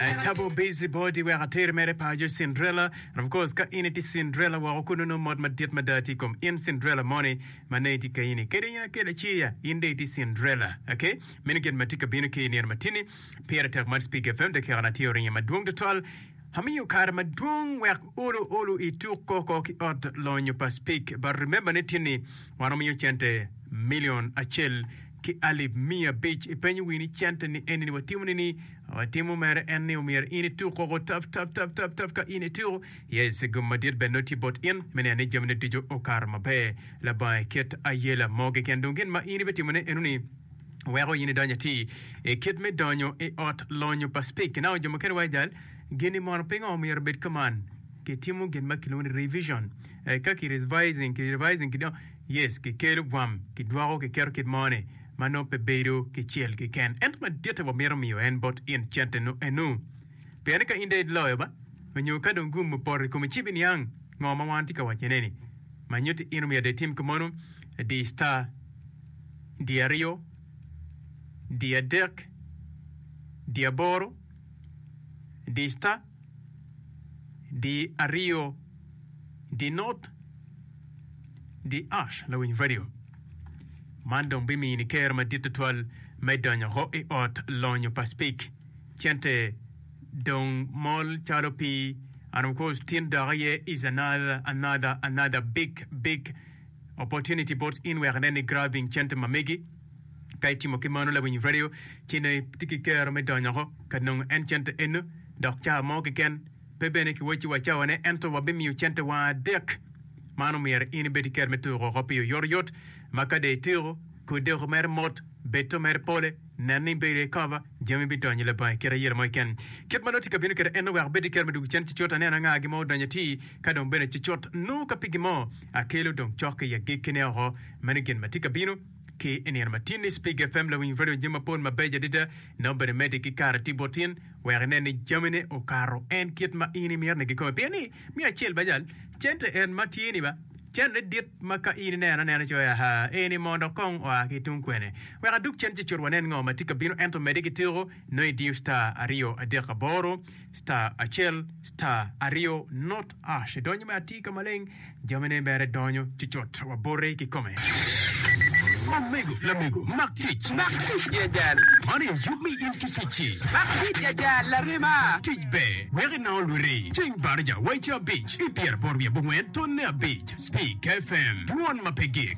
I tabo busy body wek ater mere paco Cinderella and of course ka in i tye Cinderella woko kunu nongo mot madit mada tye ikom in Cinderella moni ma nongo itye kayini ni kadi in akel laci ya in dong itye Cinderella ok meno gin matye ka bino ki i nino matini pire tek mot Speak FM dakika na tye oringo madwong tutwal amiyo kare madwong wek olu olu ituk koko ki ot lonyo pa Speak but remember ni tini wan wamiyo cente million acel ki alip miya abic. Ipenyo wii ni cente ni eni ni watimo ni ni watimo mere en ni omyero in ituk koko tap tap tap tap tap ka in ituko yes gum madit bene nongo tye bot in me neno ni jami ne ducu okato maber labanga iket ayela mo keken dong gin ma in ibe timo ne eno ni weko in idonyo ati i kit me donyo i ot lonyo pa speak ki nao jo mukene wa jal gini mono pingo omyero obed kaman ki timo gin ma kilwongo ni revision eh, ka ki revising ki revising ki dong Yes, kikelo bwam, kidwoko, kiketo kit mo ni ma nongo pe bedo ki cel keken. Ento maditte wamito miyo en bot in cente nu enu. Pien ni ka in ded loyo ba, onyo ka dong gum opoto i komi ci biniang ngo ma wan tye ka waco ne ni. Ma nyutti in omiyo de itim ki mono, di star, di aryo, di adek, di aboro, di star, di aryo, di not. Di Ash Lawiny Radio man dong bimini ker madit tutwal me donyo ho i ot lonyo pa Spik cente dong mol calo pi and of course tin dok aye is another another another big big opportunity bot in wek nen i grabbing cente ma megi ka itimo ki mano Lawiny Radio ci nongo itye ki ker me donyo ho ka nongo en cente eno dok ca mo keken Pe bene kiwacci wa cawa ne ento wabimiyo cente wang adek. Man omyero in ibed ki kero me tuko oko piyo yoryot ma ka dee ityeko, kor deko mere mot, beto mere pole, nen ni ibedo i kava, jami bidonyo labongo i kite ayela mo keken. Kit ma nongo tika abino keto en nongo wek abed ki kero me dwogo cen cicot aneno anga gin mo odonyo atir ka dong bene cicot nongo ka pigi mo akelo dong cok i agikki ne oko. Meno gin ma tye ka bino ki i nino ma tin ni Spig FM lawiny radio jami mapol mabeco adada nongo bene mede ki kare tye bot in. wek inen ni jamine okato en kit ma in imito ni gikome. Pien ni, miyo acel bacal, cente en ma tye-ni ba, cente dit ma ka in ineno anena icoyo, Aha, eni mo dok kong oa ki tung kwene? Wek adug cen ci cut wanen ngo ma tye ka bino, ento mede ki tiko, nongo idiyo star aryo adek aboro, star acel, star aryo, nut. Ash edonyo me atir ka maleng, jamine bere donyo cucut, wabote kikome. Omego, lamego, mak tic. Mak tic jajal. Man aye yub me in ki ticci. Mak tic jajal, larema. Tic ber, wek inongo lwiri. Cing Barija wa i cabic, i pyeraboro wiye bongwen tonne abic, Speak FM, dwon ma pe gik.